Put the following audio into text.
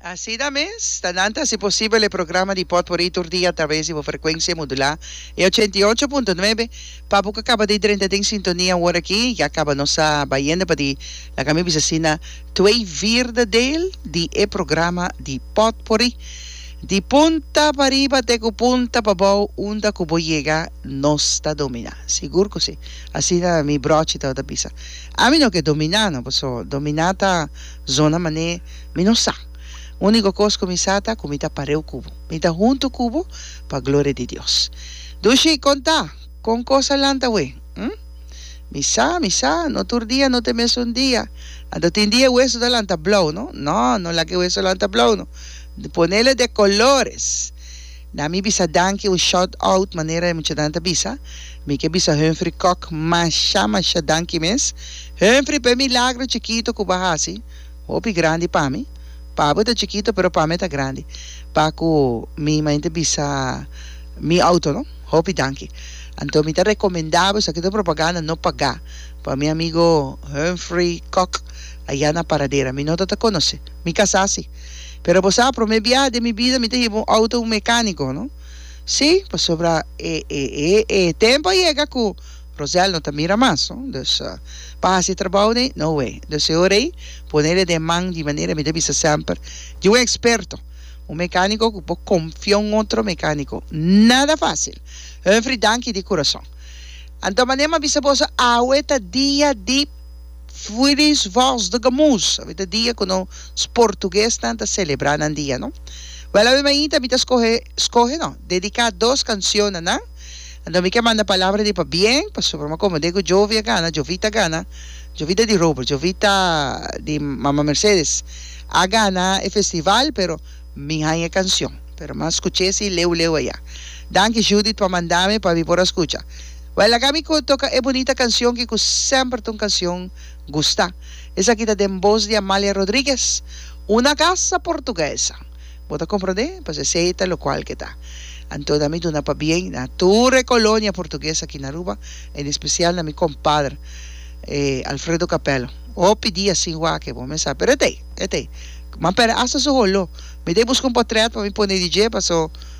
Asina mes ta nan ta hasi posibel e programa di Potpourri tur dia atraves di bo frekuensia modulá e ochenta i ocho punto nuebe. Pa bo ku kaba di drenta den sintonia wor aki, ya kaba nos a bayende pa di, laga mi bisa asina, twee vierde deel di e programa di Potpourri. Di punta pariba te ku punta pabou unda ku bo yega nos ta dominá. Sigur ku si. Asina mi bròchi tabata bisa. Ami no ke dominá no paso dominá ta zona mané mi no sa. Úniko kos ku mi sa ta ku mi ta pareu ku bo. Mi ta huntu ku bo pa gloria di Dios. Dushi, kon ta? Kon kos a lanta we? Hm? Mi sa, mi sa, no tur dia no ta e mesun dia. Anto tin dia e weso ta lanta blou no? No, no laga e weso lanta blou no. Ponela de kolores. Na mi bisa danki o shot out manera e muchanan ta bisa, mi ke bisa Humphrey Kok masha masha danki mes Humphrey p'e milagro chikito ku bo hasi, hopi grandi pa mi. Pa bo ta chikito pero pa mi ta grandi pa ku mi mainta bisa mi outo no. Hopi danki. Anto mi ta rekomendá bo esaki ta un propaganda no pagá pa mi amigo Humphrey Kok ayá na Paradera. Mi no ta ta konosé. Mi kasá si. Pero bo sa, promé biaha den mi bida mi ta hiba un outo mecánico, no? Sí, pasobra e, e, e, e tempo a yega cu Rosel no ta mira mas, no? Dus, pa haci e trabou dei, no way. Dus e ora ei, ponele den man di manera mi ta bisa semper, di un experto, un mecánico cu bo confia un otro mecánico. Nada fácil. Humphrey, danki di curason. Anto, manera mi a bisa boso, awe ta dia di. Fwilish voz de gamus. Awe ta dia cu nos portuguesnan ta celebra nan dia, no? Wel, awe mainta mi ta scoge, scoge no, dedica dos cancion na nan. Anto mi ke manda palabra di pabien, pasobra mi comende cu Jovia gana, Jovita gana, Jovita di Robert, Jovita di Mama Mercedes, a gana e festival, pero mi haya e cancion, pero mi a scuche si leu leu aya. Danki Judith pa manda mi pa mi por a scucha. Bai laga mi cu toca e bunita cancion ki cu semper ta un cancion gusta. Esaki ta den bos di Amalia Rodriguez, una gasa portuguesa. Bo ta comprende? Pues esey ta locual ke ta. Anto na mi duna pabien na tur e colonia portugues aki na Aruba, en especial na mi compadre, eh, Alfredo Capello. Hopi dia sin wak ke bo mesa, pero e t'ei, e t'ei. Mampera hasta su holo. Mi t'ei busca un potret pa mi pone di dje, paso